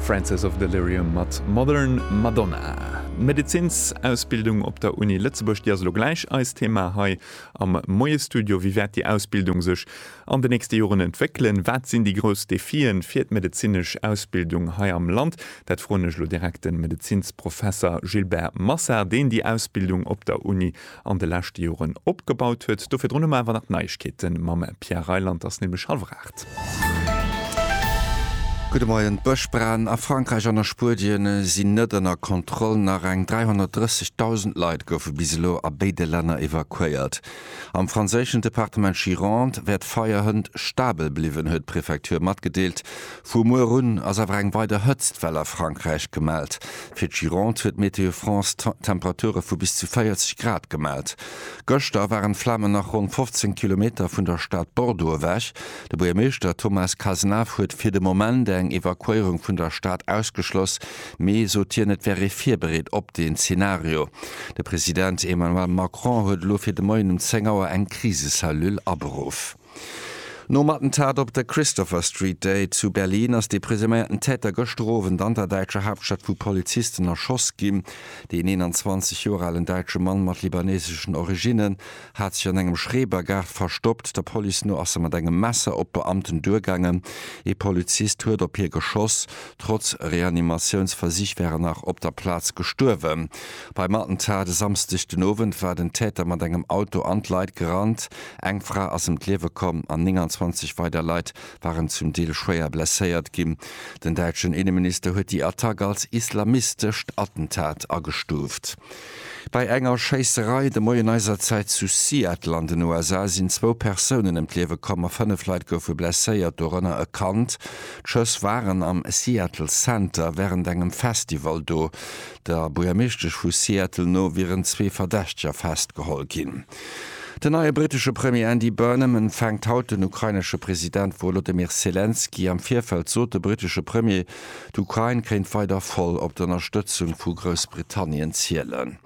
Francis of Delirium mat Modern Madonna. D'Medezinsausbildung op der Uni Lëtzebuerg, déi ass elo gläich eist Thema hei am Moie-Studio. Wéi wäert déi Ausbildung sech an den nächste Joren entwéckelen? Wat sinn déi grouss Defien fir d'medezinesch Ausbildung hei am Land? Dat froen ech elo direkt de Medezinsprofesser Gilbert Massard, deen déi Ausbildung op der Uni an de leschte Joren opgebaut huet. Do virdrun hu mer awer nach Neiegkeete mam Pierre Reyland, et ass nämlech hallwer aacht. Gudde Moien, D'Bëschbranen a Frankräich an a Spuedien sinn net ënner Kontroll. Nach eng 330.000 Leit goufe bis elo a béide Länner evakuéiert. Am franséischen Departement Gironde wär d'Feierhënt stabel bliwwen, huet d'Prefecture matgedeelt. Vu muer un ass awer eng weider Hëtztwell a Frankräich gemellt. Fir d'Gironde huet Météo France Temperature vu bis zu 40 Grad gemellt. Gëschter waren d'Flamen nach ronn 15 Kilometer vun der Stad Bordeaux ewech. De Buergermeeschter Thomas Cazenave huet fir de Moment eng Evakuéierung vun der Stad ausgeschloss, mee sot hien, et wär ee virbereet op deen Zenario. De President Emmanuel Macron huet elo fir de Moien um 10 Auer eng Krisecellule aberuff. Nom Attentat op der Christopher Street Day zu Berlin ass de presuméierten Täter gëschter Owend an der däitscher Haaptstad vu Polizisten erschoss ginn. Deen 21 Joer alen däitsche Mann mat libaneseschen Originnen hat sech an engem Schrebergaart verstoppt. Der Police no ass e mat engem Messer op d'Beamten duergaangen. Ee Polizist huet op hie geschoss. Trotz Reanimatiounsversich wär en nach op der Plaz gestuerwen. Beim Attentat e Samsdeg den Owend war den Täter mat engem Auto an d'Leit gerannt. Eng Fra ass ëm d'Liewe komm an 29 weider Leit waren zum Deel schwéier blesséiert ginn. Den däitschen Inneminister huet déi Attack als islamistescht Attentat agestuuft. Bei enger Schéisserei de Moien eiser Zäit zu Seattle an den USA sinn zwou Persounen ëm d'Liewe komm a fënnef Leit goufe blesséiert, dorënner e Kand. D'Schëss waren am Seattle Center wärend engem Festival do. Der Buergermeeschtesch vu Seattle no wieren zwee Verdächteger festgeholl ginn. Den neie brittesche Premier Andy Burnham empfänkt haut den ukrainesche President Wolodymyr Selenskyj. Am Virfeld sot de brittesche Premier, d'Ukrain kéint weider voll op d'Ënnerstëtzung vu Groussbritannien zielen.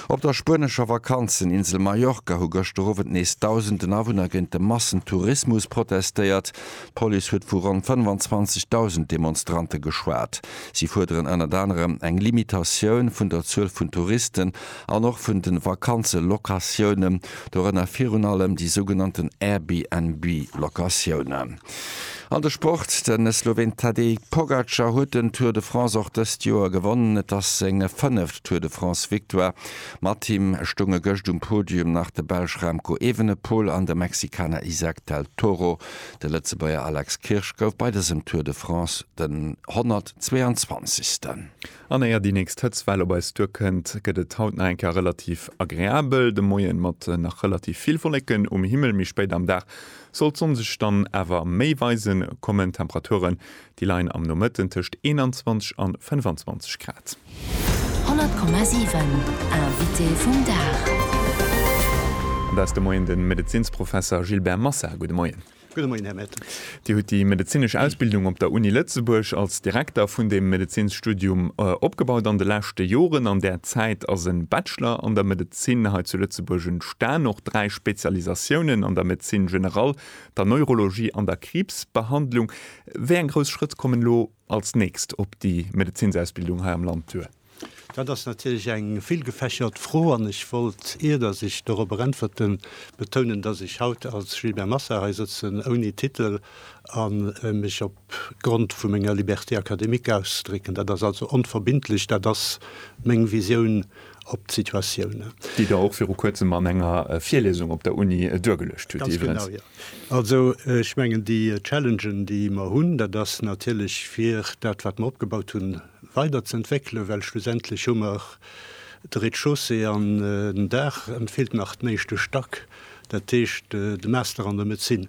Op der spuenescher Vakanzeninsel Mallorca hu gëschter Owend nees dausenden Awunner géint de Massentourismus protestéiert. D'Police huet vu ronn 25.000 Demonstrante geschwat. Si fuerderen ënnert anerem eng Limitatioun vun der Zuel vun Touristen an och vun de Vakanzelocatiounen, dorënner virun allem déi sougenannten Airbnb-Locatiounen. An de Sport, De Sloween Tadej Pogacar huet den Tour de France och dëst Joer gewonnen. Et ass seng fënneft Tour de France-Victoire. Mat him stounge gëscht um Podium nach de Belsch Remco Evenepoel an de Mexikaner Izack del Toro. De Lëtzebuerger Alex Kirsch gouf bei dësem Tour de France den 122. An éier déi nächst Hëtztwell op eis duerkënnt, gëtt et haut nach eng Kéier relativ agreabel. De Moien mat nach relativ vill Wolleken um Himmel, méi spéit am Dag soll d'Sonn sech dann awer méi weise kommen. Temperaturen déi leien am Nomëtten tëscht 21 an 25 Grad. 100,7 Invité vum Dag. Dat ass de Moien de Medezinsprofesser Gilbert Massard. Gudde Moien. Gudde Moien, Här Mette. Dir hutt déi medezinesch Ausbildung op der Uni Lëtzebuerg als Direkter vun deem Medezinsstudium opgebaut an de leschte Joren. An där Zäit ass e Bachelor an der Medezin hei zu Lëtzebuerg entstan, och dräi Spezialisatiounen an der Médecine générale, der Neurologie an der Kriibsbehandlung. Wéi eng grouss Schrëtt kommen elo als nächst op déi Medezinsausbildung hei am Land duer? Dat ass natierlech eng villgefächert Fro an ech wollt, ier datt ech dorobber äntwerten, betounen, datt ech haut als Gilbert Massa hei sëtzen, ouni Titel, a mech op Grond vu menger Liberté académique ausdrécken. Dat ass also onverbindlech. Dat ass meng Visioun op d'Situatioun. Déi Der och viru Kuerzem an enger Virlesung op der Uni duergeluecht hutt iwwerens. Ganz genau, jo. Also ech mengen, déi Challengen, déi mer hunn, dat ass natierlech, fir dat, wat mer opgebaut hunn, weider ze entwéckelen, well schlussendlech hu mer de Rez-de-chaussée an den Daach, et feelt nach den éischte Stack, dat heescht de Master an der Médecine.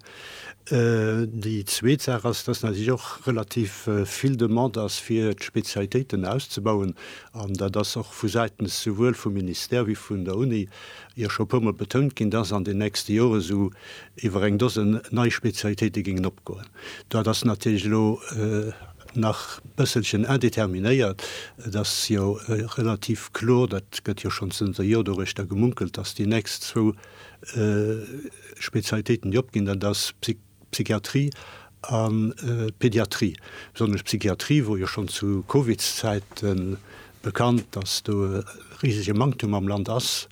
Déi zweet Saach ass, dass natierlech och relativ vill Demande ass fir d'Spezialitéiten auszebauen an dat ass och vu Säitens souwuel vum Ministère wéi vun der Uni jo scho e puer mol betount ginn, dass an den nächste Joren esou iwwer eng Dosen nei Spezialitéite géingen opgoen. Dat ass natierlech elo nach bësselchen indeterminéiert. Et ass jo relativ kloer, dat gëtt jo schonn zënter e Jor doruechter gemunkelt, datt déi nächst zwou Spezialitéiten, déi opginn, dat ass Psychiatrie a Pediatrie, besonnesch Psychiatrie, wou jo schonn zu Covidszäiten Bekannt, dass do e risege Manktum am Land ass,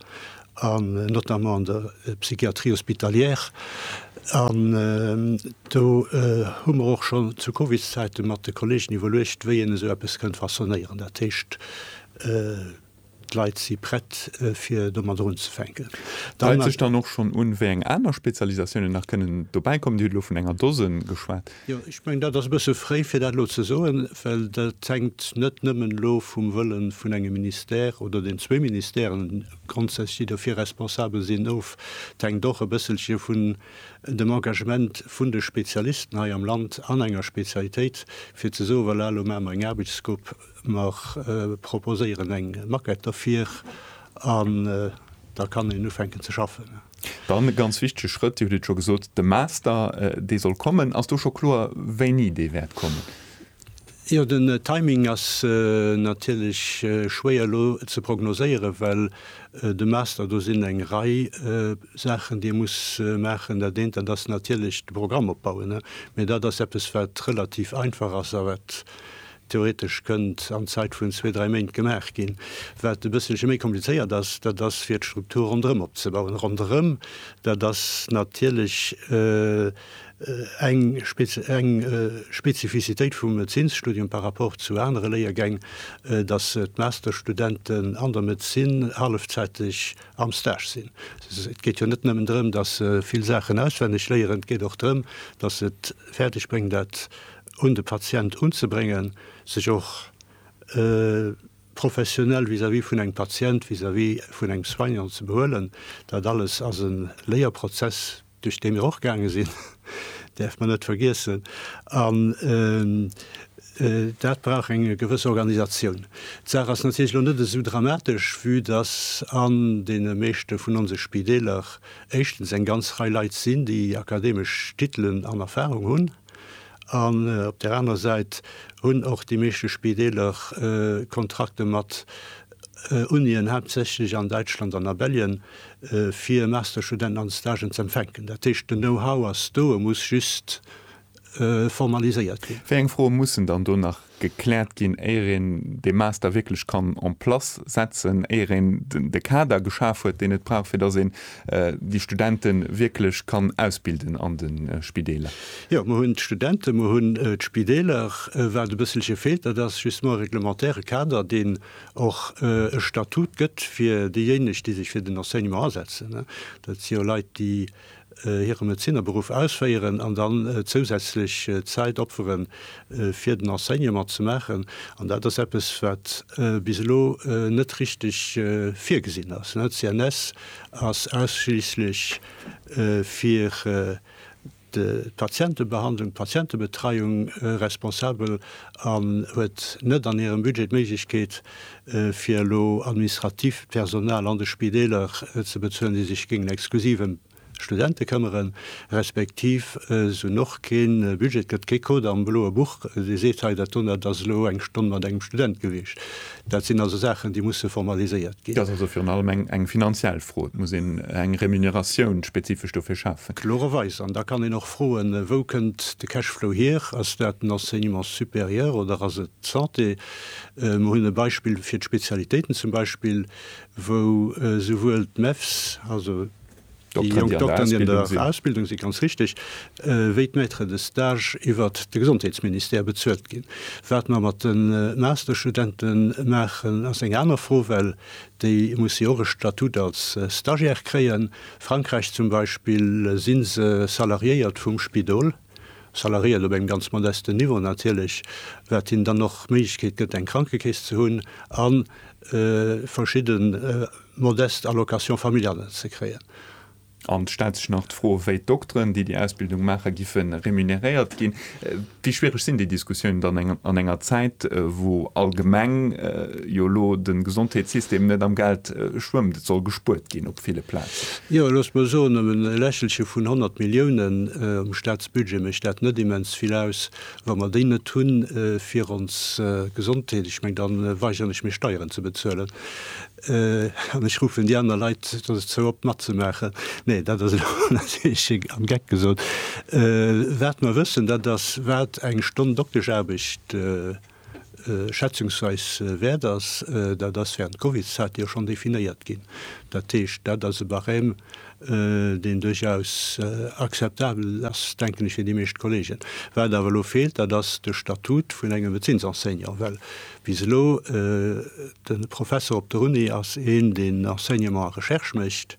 notamment an der Psychiatrie hospitalière. An do hu mer och schonn zu Covids-Zäite mat de Kolleegen iwwerluecht, wéi een esou eppes kënnt façonnéieren. Dat heescht, d'Leit si prett, fir domadder unzefänken. Deit sech dann och schonn un, wéi eng aner Spezialisatiounen nach kënnen dobäikommen. Dir hutt elo vun enger Dose geschwat. Jo, ech mengen, dat ass e bësse fréi, fir dat elo ze soen, well dat hänkt net nëmmen elo vum Wëlle vun engem Ministère oder den zwee Ministèren grondsätzlech, déi dofir responsabel sinn, of. Et hänkt och e bësselche vun dem Engagement vun de Spezialisten hei am Land an enger Spezialitéit, fir ze soen, Voilà, elo maache mer eng Aarbechtsgrupp, Mer proposéieren eng Maquette derfir an da kann een ufänken ze schaffen. Dann e ganz wichtege Schrëtt, Dir hutt et scho gesot, de Master, dee soll kommen. Ass do scho kloer, wéini dee wäert kommen? Jo, den Timing ass natierlech schwéier elo ze prognoséieren, well de Master, do sinn eng Rei Saachen, déi e muss maachen. Dat eent, dat ass natierlech de Programm opbauen. Mee dat ass eppes, wat relativ einfach ass a wat Theoretesch kënnt an Zäit vun zwee, dräi Méint gemaach ginn. Wat e bësselche méi komplizéiert ass, dat ass fir d'Struktur ronderëm opzebauen. Ronderëm, dat ass natierlech eng Spezifizitéit vum Médezinsstudium par rapport zu anere Léiergäng, datt d'Masterstudenten an der Medezin hallefzäiteg am Stage sinn. Et geet jo net nëmmen drëm, datt se vill Saachen auswenneg léieren, et geet och drëm, datt se et fäerdeg bréngen, dat un de Patient unzebréngen, sech och professionell vis-à-vis vun engem Patient, vis-à-vis vun engem Soignant ze behuelen, dat alles ass e Léierprozess, duerch dee mir och gaange sinn, däerf mer net vergiessen. An dat brauch eng gewëss Organisatioun. D'Saach ass natierlech elo net esou dramatesch, vue dass an deene meeschte vun onse Spideeler éischtens eng ganz Rei Leit sinn, déi akademesch Titelen an Erfahrung hunn, An op där aner Säit hunn och déi meeschte Spideeler Kontrakte mat Unien, haaptsächlech an Däitschland an a Belgien, fir Masterstudenten an de Stagen ze empfänken. Dat heescht, den Know-how ass do, e muss just formaliséiert ginn. Wéi eng Froe mussen dann do nach gekläert ginn, éier een dee Master wierklech kann en place setzen, éier een de Kader geschaf huet, deen et brauch, fir dass een déi Studente wierklech kann ausbilden an de Spideeler? Jo, mer hunn d'Studenten, mer hunn d'Spideeler. Wat e bësselche feelt, dat ass justement e reglementaire Kader, deen och e Statut gëtt fir déijéineg, déi sech fir den Enseignement asetzen. Dat si jo Leit, déi. hire Medezinerberuff ausféieren an dann zousätzlech Zäit opferen, fir den Enseignement ze maachen. An dat ass eppes, wat bis elo net richteg virgesinn ass. D'CNS ass ausschliisslech fir d'Patientebehandlung, d'Patientebetreiung responsabel an huet net an hirem Budget d'Méiglechkeet, fir elo administratiivt Personal an de Spideeler ze bezuelen, déi sech géingen exklusiv ëm d'Studente këmmeren, respektiv se hunn och kee Budget, et gëtt kee Code am bloe Buch, dee seet, hei dat donnert ass elo eng Stonn mat engem Student gewiescht. Dat sinn also Saachen, déi musse formaliséiert ginn. Dat ass also virun allem eng finanziell Fro. Et muss een eng Remuneratioun spezifesch dofir schafen. Kloererweis. An da kann een och froen, Wou kënnt de Cashflow hier? Ass dat den Enseignement supérieur oder ass et d'Santé? Mer hunn e Beispill fir d'Spezialitéiten zum Beispill, wou souwuel d'Mefs, also déi jonk Dokteren, déi an der Ausbildung sinn, ganz richtig, wéi d'Maîtres de stage iwwer de Gesondheetsministère bezuelt ginn. Wat mer mat de Masterstudente maachen, ass eng aner Fro, well déi musse jo och e Statut als Stagiaire kréien. Frankräich zum Beispill si se salariéiert vum Spidol. Salariéen op engem ganz modesten Niveau natierlech, wat hinnen dann och d'Méiglechkeet gëtt, eng Krankekeess ze hunn a verschidde modest Allocations familiales ze kréien. An et stellt sech nach d'Fro, wéi d'Dokteren, déi déi Ausbildung maachen, giffe remuneréiert ginn. Wéi schwiereg sinn déi Diskussiounen dann an enger Zäit, wou allgemeng jo elo de Gesondheetssystem net am Geld schwëmmt, et soll gespuert ginn op ville Plazen. Jo, loosst mol soen, ëm e Lächelche vun 100 Milliounen um Staatsbudget mécht dat net immens vill aus, wa mer déi net hunn fir ons Gesondheet, ech meng, da weigeren ech mech Steieren ze bezuelen an ech ruffen déi aner Leit dozou op matzemaachen. Nee, dat ass elo natierlech am Geck gesot. Wat mer wëssen, dat ass, wat eng Stonn Doktescharbecht. schätzungsweis wäert ass, dat ass während Covidzäite jo schonn definéiert ginn. Dat heescht, dat ass e Barème, deen duerchaus akzeptabel ass, denken ech, fir déi meescht Kolleegen. Wat awer elo feelt, dat ass de Statut vun engem Médezinsenseignant, well bis elo de Professor op der Uni ass een, deen Enseignement a Recherche mécht,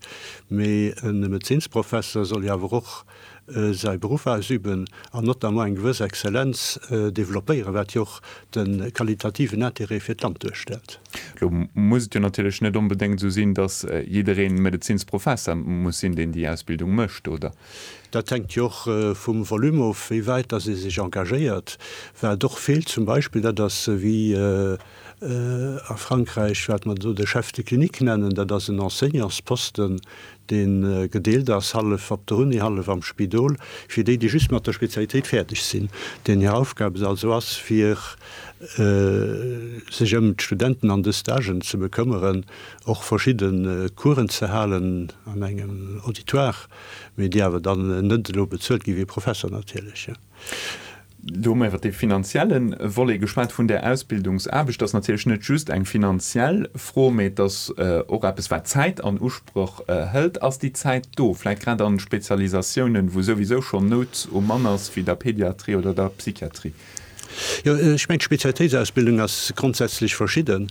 mee e Médezinsprofesser soll jo awer och, säi Beruff ausüben an notamment eng gewëss Exzellenz developpéieren, wat jo och de qualitativen Interêt fir d'Land duerstellt. Lo muss et jo natierlech net onbedéngt esou sinn, datt jiddereen Medezinsprofesser muss sinn, deen déi Ausbildung mécht, oder? Dat hänkt jo och vum Volume of, wéi wäit datt ee sech engagéiert, wat och feelt zum Beispill, dat ass, wéi. A Frankräich, wat mer do de Chef de clinique nennen, dat ass en Enseignantsposten, dee gedeelt ass, hallef op der Uni, hallef am Spidol, fir déi, déi just mat der Spezialitéit fäerdeg sinn, deenen hir Aufgab et also ass, fir sech ëm d'Studenten an de Stagen ze bekëmmeren, och verschidde Coursen ze halen an engem Auditoire, mee déi awer dann net elo bezuelt ginn, wéi Professor natierlech. Do hu mer iwwert dee finanzielle Volet geschwat vun där Ausbildungsaarbecht. Dat ass natierlech net just eng finanziell Fro, mee et ass och eppes, wat Zäit an Usproch hëlt. Ass déi Zäit do, vläicht grad a Spezialisatiounen, wou souwisou schonn Nout um Mann ass, wéi der Pediatrie oder der Psychiatrie? Jo, ech mengen, d'Spezialitéitsausbildung ass grondsätzlech verschidde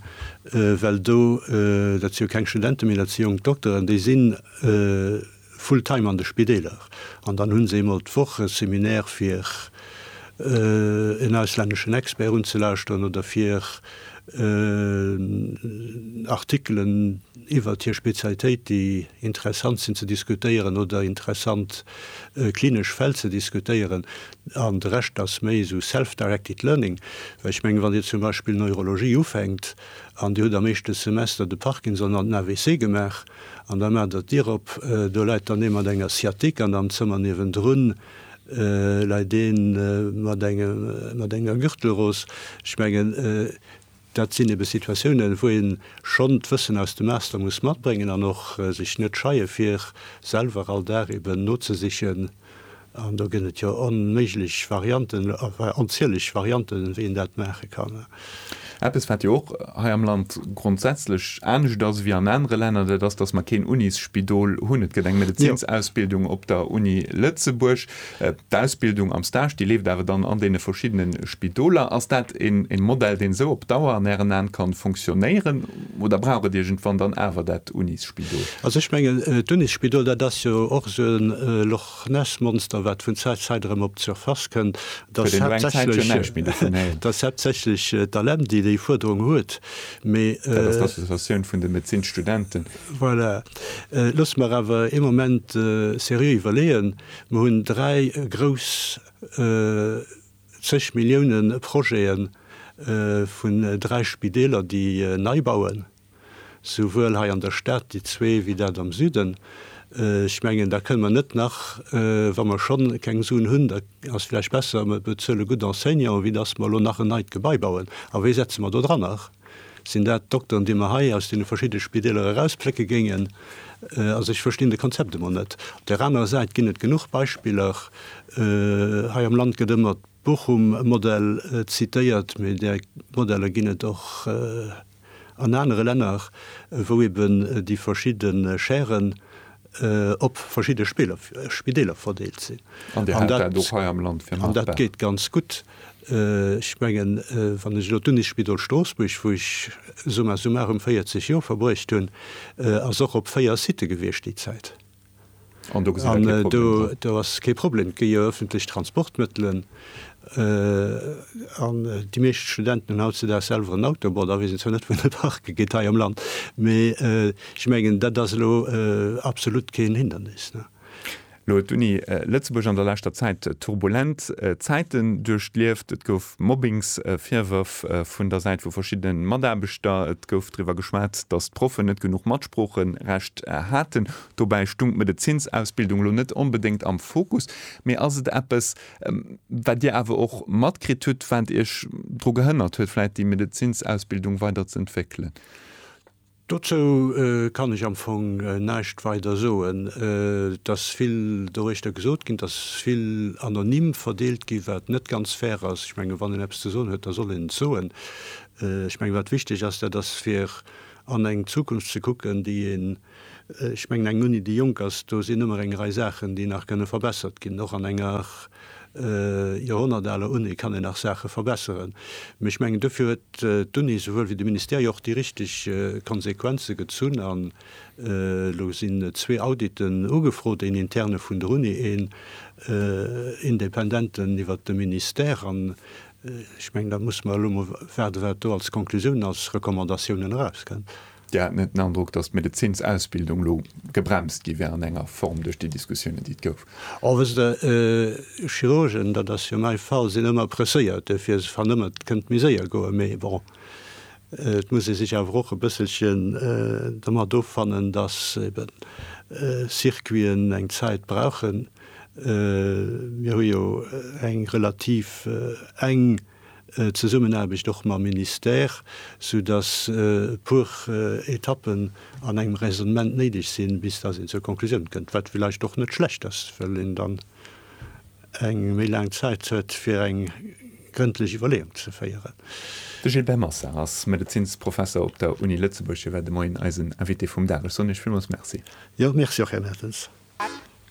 well do, dat si jo keng Studente méi, dat si jonk Dokteren, déi sinn, full time an de Spideeler an dann hunn se eemol d'Woch e Seminaire fir en auslänneschen Expert unzelauschteren oder fir Artikelen iwwert hir Spezialitéit, déi interessant sinn, ze diskutéieren oder interessant klinesch Fäll ze diskutéieren an de Rescht ass méi esou self-directed learning. Well ech mengen, wann Dir zum Beispill Neurologie ufänkt an Dir hutt am éischte Semester de Parkinson an den AVC gemaach, An da maacht Der d'Dir op, do läit dann ee mat enger Sciatique an am Zëmmer niewendrun läit ee mat enger Gürtelrose. Ech mengen, dat sinn ebe Situatiounen, wou ee schonn d'Wëssen aus dem Master muss matbréngen an och sech net scheie fir selwer all Dag eben nozesichen, An do gëtt et jo onméiglech Varianten, enfin onzieleg Varianten, wéi een dat maache kann. Eppes, wat jo och hei am Land grondsätzlech anescht ass wéi an anere Länner, dat ass, dass mer keen Unisspidol hunn. Et gëtt eng Medezinsausbildung op der Uni Lëtzebuerg. D'Ausbildung am Stage, déi leeft awer dann an deene verschiddene Spidoler. Ass dat e Modell, deen esou op Dauer an Ären An kann funktionéieren, oder braucht et iergendwann dann awer dat Unisspidol? Also ech mengen, d'Unisspidol, dat ass jo och esou e D'Nässmonster, wat vun Zäit Zäit erëm op d'Surface kënnt, dat ass haaptsächlech d'ALEM, déi déi Fuerderung huet. Dat ass d'Associatioun vun de Medezinsstudenten. Voilà. Loosse mer awer ee Moment seriö iwwerleeën. Mer hunn dräi grouss zeg Milliounen Projete vun dräi Spideeler, déi nei bauen. souwuel hei an der Stad, déi zwee, wéi dat am Süden. Ech mengen, da kënne mer net nach, wa mer schonn keng Suen hunn, da ass vläicht besser, mer bezuele gutt Enseignanten, wéi dass mer elo nach en neit Gebai bauen. A wie setze mer do dranner? Sinn dat d'Dokteren, déi mer hei aus deene verschidde Spideeler erausplécke géingen? Also ech verstinn de Konzept emol net. Op där anerer Säit ginn et genuch Beispiller. Hei am Land gëtt ëmmer d'Bochum-Modell zitéiert, mee där Modeller ginn et och. An anere Länner, wou eben déi verschidde Chairen op verschidde Spideeler verdeelt sinn. An Dir hält dat och hei am Land fir machbar? An dat geet ganz gutt. Ech mengen, wann ech elo d'Unisspidol Stroossbuerg, wou ech summa summarum 40 Joer verbruecht hunn, ass och op véier Sitë gewiescht déi Zäit. An do gesinn Der kee Problem dran? An do ass kee Problem. Et gi jo öffentlech Transportmëttelen. An déi meescht Studenten hunn hautzedaags selwer en Auto. Bon, da weess een zwar net, wou en parke geet hei am Land. Mee ech mengen, dat ass elo absolut keen Hindernis. Elo huet d'Uni Lëtzebuerg an der leschter Zäit turbulent Zäiten duerchlieft. Et gouf Mobbingsvirwërf vun der Säit vu verschiddene Mataarbechter. Et gouf driwwer geschwat, datt d'Proffen net genuch Sproocherecht haten. Dobäi stung d'Medezinsausbildung elo net onbedéngt am Fokus. Mee ass et eppes, wat Dir awer och matkritt hutt, wat Iech dru gehënnert huet, vläit déi Medezinsausbildung weider ze entwéckelen? Dozou kann ech am Fong näischt weider soen. Et ass vill doriichter gesot ginn, et ass vill anonym verdeelt gi wat net ganz fair ass. Ech menge wann een eppes ze soen huet, da soll een et soen. Ech menge wat wichteg ass, dat ass fir an eng Zukunft ze kucken, déi een, ech mengen, eng Uni, déi jonk ass, do sinn ëmmer eng Rei Saachen, déi nach kënne verbessert ginn. Och an enger joerhonnertaler Uni kann een nach Saache verbesseren. Mee ech mengen, dofir huet d'Uni souwuel wéi de Ministère jo och déi richteg Konsequenze gezunn. An elo sinn zwee Auditen ugefrot, een interne vun der Uni, een independenten iwwert de Ministère. An Ech mengen, da musse mer elo emol waarden, wat do als Konklusioun, als Recommandatiounen erauskënnt. Dir hat net den Androck, datt d'Medezinsausbildung elo gebremst gi wär an enger Form duerch déi Diskussiounen, déi et gouf? Oh, wësst Der, Chirurgen, dat ass jo mäi Fall, sinn ëmmer presséiert, duerfir se fannen ëmmer, et kënnt méi séier goen. Mee bon, et muss ee sech awer och e bësselchen domat offannen, datt eben Circuiten eng Zäit brauchen. Mir hu jo eng relativ enk Zesummenaarbecht och mam Ministère, soudass e puer Etappen an engem Raisonnement néideg sinn, bis dass een zur Konklusioun kënnt, wat villäicht och net schlecht ass, well een dann eng méi laang Zäit huet, fir eng grëndlech Iwwerleeung ze féieren. De Gilbert Massard ass Medezinsprofesser op der Uni Lëtzebuerg. Hie war de Moien eisen Invité vum Dag. Ech soen Iech villmools Merci. Jo, Merci och, Här Mertens.